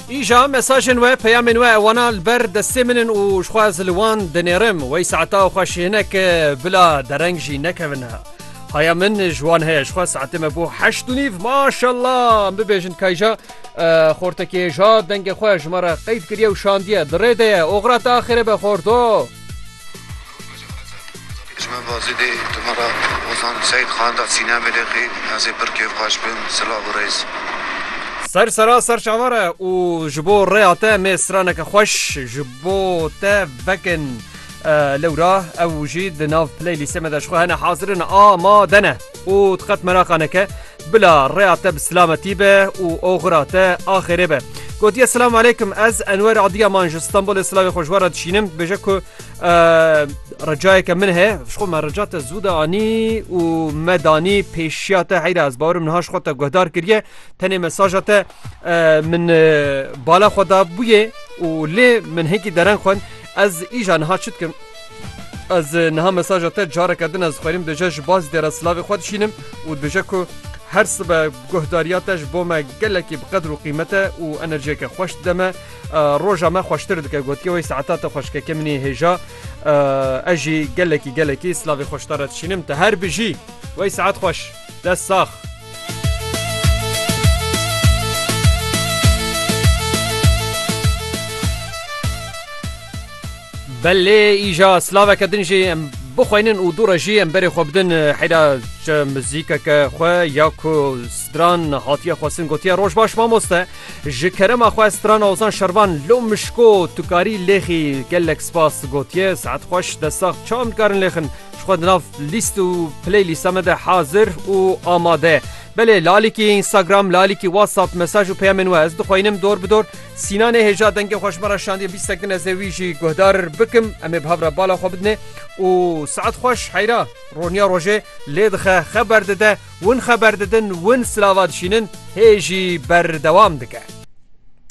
Îja mesajên we peyamên we ewana li ber destê min in û jixwe ez li wan dinêrim wey saeta xwe ji hinek bila dereng jî nekevin he. Haya min ji wan heye jixwe saetê me bo heşt û nîv maşalla bibêjin kayja xortekê ja dengê xwe ji me re qeyd kiriye û şandiye di rê de ye oxira te axêrê be xorto. Ji me bazê dê tu me ra Ozan Seyîd Xan da sînem ê lê qî ez ê pir kêfxweş bim silav û rêz. Ser sera ser çavan re û ji bo rêya te mê straneke xweş ji bo te vekin lewra ew jî di nav playlîstê me de ji xwe hene hazir in a ma de ne û tu qet meraqa neke bila rêya te bi silametî be û oxira te axêrê be. Gotiye silam aleykum ez enwer adiya man ji stanbolê silavê xwe ji we re dişînim dibêje ku Recayeke min he xwe me rica te zû de anî û me danî pêşiya te heyra ez barim niha xwe te guhdar kiriye tenê mesaja te min bala xwe da bûye û lê min hekî deren xwe ez îja niha çi dikim ez niha mesaja te careke din ez xwerim dije ji baz dera silavê xwe dişînim û dije ku her sibe guhdariya te ji bo me gelekî bi qedr û qîmete û enerjiyeke xweş deme roja me xweştir dike gotiye wey saeta te xweşkeke minê hêja ez jî gelekî gelekî slavê xweşta re dişînim te her bijî wey saet xweş dest sax. Belê îja slaveke din jî em bixweynin û dûre jî em berê xwe bidin heyra mizîkeke xwe ya ku stran hatiye xwestin gotiye roj baş mamoste. Ji kerema xwe strana Ozan Şervan lo mişko tu karî lêxî gelek spas gotiye saet xweş dest sax çawa em dikarin lêxin ji xwe di nav lîst û play lîsta me de hazir û amade belê lalikî Instagram lalikî WhatsApp mesaj û peyamên we ez dixwînim dor bi dor sînanê hêja dengê xweş me re şandiye bîstek din ez ê wî jî guhdar bikim em ê bi hev re bala xwe bidinê û saet xweş heyra roniya rojê lê dixe xeber dide Win xeber didin, win silava dişînin, hê jî berdewam dike.